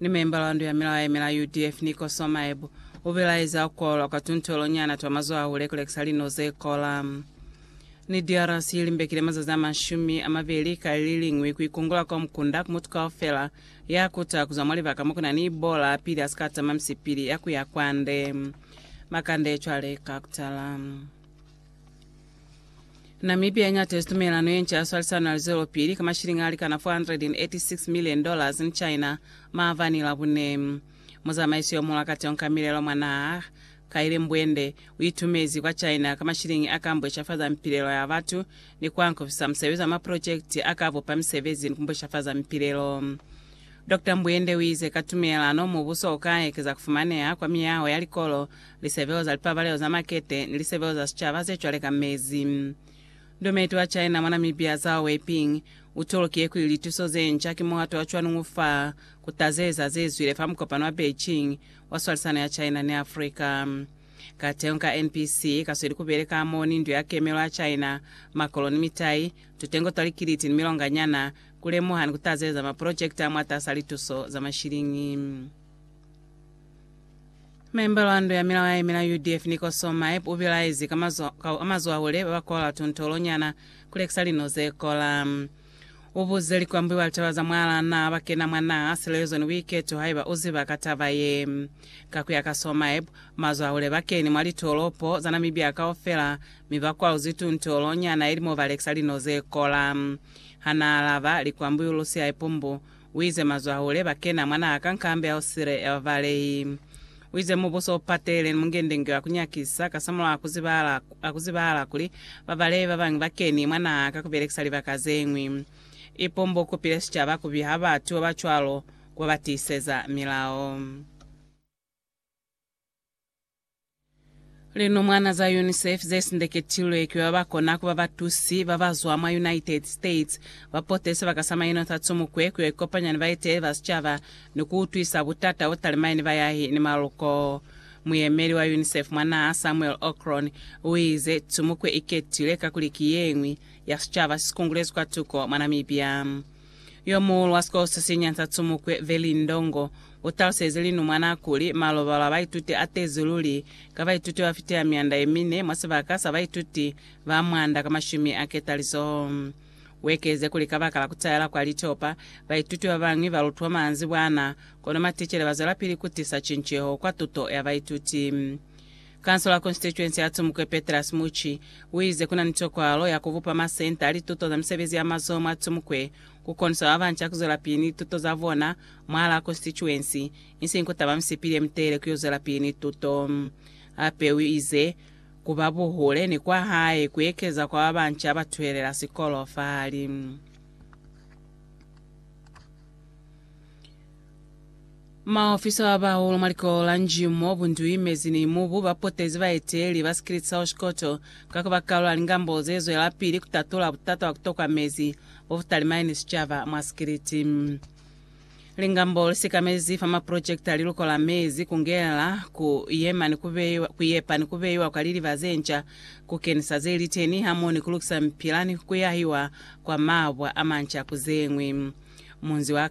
Ni membala wa ndu ya milao ya yemela UDF, Nico Somaeb, u bilaeza ku kolwa kwa tuntuelo nyana twa mazoho a hule ku lekisa lino ze kola. Ni DRC li mbekile mazazi a mashumi a mabeli ka li liñwi ku ikungula kwa mukunda ku mutu kaufela ya kuta ku zwa mwa libaka mo ku na ni Ebola pili a si ka tama misipili ya ku ya kwande. Makande cwale ka ku tala. Namibia iñatezi tumelano yenca ya swalisano ya lizelopili ka mashilingi alikana 486 million dollars ni China maabani Labune. Muzamaiso yomuhula ka teño ka milelo mwa naha, Kaile Mbwende, uitumezi kwa China ka mashilingi aka mbweshafaza mipilelo ya batu ni kuankofisa musebezi wa maprojekiti aka bupa misebezi ni kumbweshafaza mipilelo. Doctor Mbwende uize ka tumelano mubuso uka ekeza kufumaneha kwa miyaho ya likolo lisebeo za lipabalelo za makete ni lisebeo za sicaba zecwale ka mezi. Ndometi wa China mwa Namibia Zhao Weiping utolokiye kuli lituso zenca ki muhato wa cwalo ño fa kutazeza zezwile fa mukopano wa Beijing wa swalisano ya China ni Africa. Kateho ka NPC kasweli kubeleka hamoho ni Ndu ya Kemelo ya China, makolo ni mitai, tutengo twa likiliti ni milonganyana, kulemuha ni kutazeza mapolojekiti amwatas'a lituso za mashiliñi. Memba lwa ndo ya milao ya yemela UDF Nicoso Maep ubilaezi ka mazwahule babakola tuntolo nyana kulekisa lino zekola. Ubuze likwambwi ba litaba za mwala na bakena mwa naha silelezo ni buiketo haiba uziba ka taba ye. Ka kuya ka So Maep, mazwahule bakeni mwa litolopo za Namibia kaufela mi bakwaluzi tuntolo nyana ili mobalekisa lino zekola. Hanaalaba, likwambwi ulusi haipu mbu, Uize, Mazwahule bakena mwanaa ka nkambi ya Osire ya bavalehi. Uize, Mubuso upatele ni mungendenge wa kunyakisa, kasamulaho akuzibahala, akuzibahala kuli bavalehi babañwi bakeni mwanaa ka kubelekisa libaka zeñwi. Ipombo ukupile sicaba kubiha batu babacwalo kuba batiiseza milao. Linumwana za UNICEF ze sindeketilwe ki ba ba kona ku ba batusi ba ba zwa mwa United States ba pote sibaka sa Maino sa Tsumukwe ku yo ikopanya ni baeteleli ba sicaba ni ku utwisa butata bo talimani bayahi ni maluko. Muyemeli wa UNICEF mwa naha, Samuel Okron, u ize, Tsumukwe i ketile kakuli ki ye ñwi ya sicaba si sikungulezi kwatuko mwa Namibia. Yomuhulu wa sikolo se sinya sa Tsumukwe, Veli Ndongo, utalusezi linumwana kuli, Malobalo a baituti atezi luli, ka baituti bafitila mianda yemine mwa sibaka sa baituti ba mwanda ka mashumi a ketalizoho. Uekeze kuli, Kabaka la kutayela kwa litopa, baituti babañwi balutwa manzibwana, kono maticele bazwelapili kutisa cinceho kwa tuto ya baituti. Kansola Konstituensi ya Tsumukwe Petrus Muchi uize kuna ni tokwalo ya kubupa masenta a lituto za misebezi ya mazoho mwa Tsumukwe kukonisa babanca kuzwelapili ni lituto zabona mwaalaa Konstituensi isiñi kutaba misipili yemitelele kuyo zwelapili ni tuto. Hape uize kuba buhule ni kwahae kuekeza kwa babanca abatuhelela sikolo fahali. Maofisa ba bahulu mwa likolo la Njimo, Bundui, Mezzini, Mubu, ba potezi baeteli ba Skillet South Koto ka ku ba kalu ya lingambo ze zwelapili ku tatula butata bwa ku tokwa mezi bo bu talimani ni sicaba mwa Skillet. Lingambo li sikamezi fa maprojekiti a liluko la mezi, ku ngela, ku yema ni ku beiwa, ku yepa ni ku beiwa kwa liliba ze nca, ku kenisa ze li teni hamoho ni ku lukisa mipila ni ku yahiwa kwa mabwa a manca ku ze ñwi. Munzi wa.